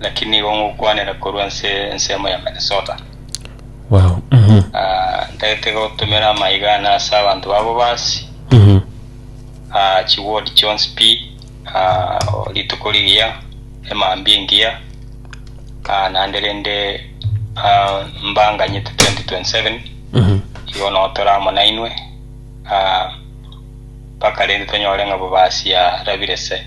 Lakini nigo ngokwanera korwa nse ensemo ya Minnesota. Wow. Mhm. Ah, ntagete gotumera amaiga na ase abanto babo basi Mhm. ah, chiward chionsi pi ah, rituko rigiya emambia engiya ah, naende rende ah, mbanganyete 2027 Mhm. igo no tore amo nainwe ah, mpaka rende tonyore ng'a bobasi arabire se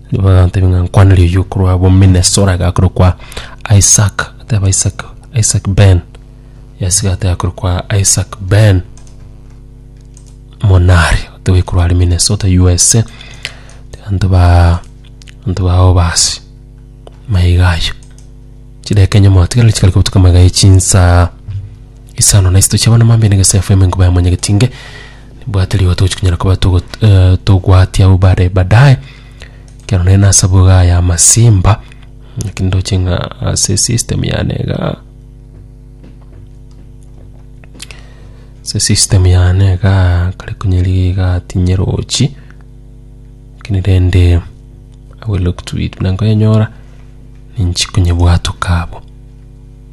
Bagatebia ng'a nkwanire oyio korwa abo Minnesota iga korwa kwa Isaac ateba Isaac Isaac Ben yes iga ateba korwa kwa Isaac Ben Monari oteba oyo korwa are Minnesota USA abanto ba abanto bao basi maya iga ayio chidakika enye motigereri chikare kobutuka amaiga ya chinsa isano na isatu chia bono mambia na egesaifo emengoba ya monyageti inge Nibwate rigo togochi konyara koba togot- eh, togwatia abwo bare badaye ekero nere nase aboga aya amasimba naki ndoche ng'a ase system yane igaa ase system yane igaa kare konya riga igaa tinyerochi lakini rende I will look to it buna nkoyenyora ninchi konyebwatoka abwo.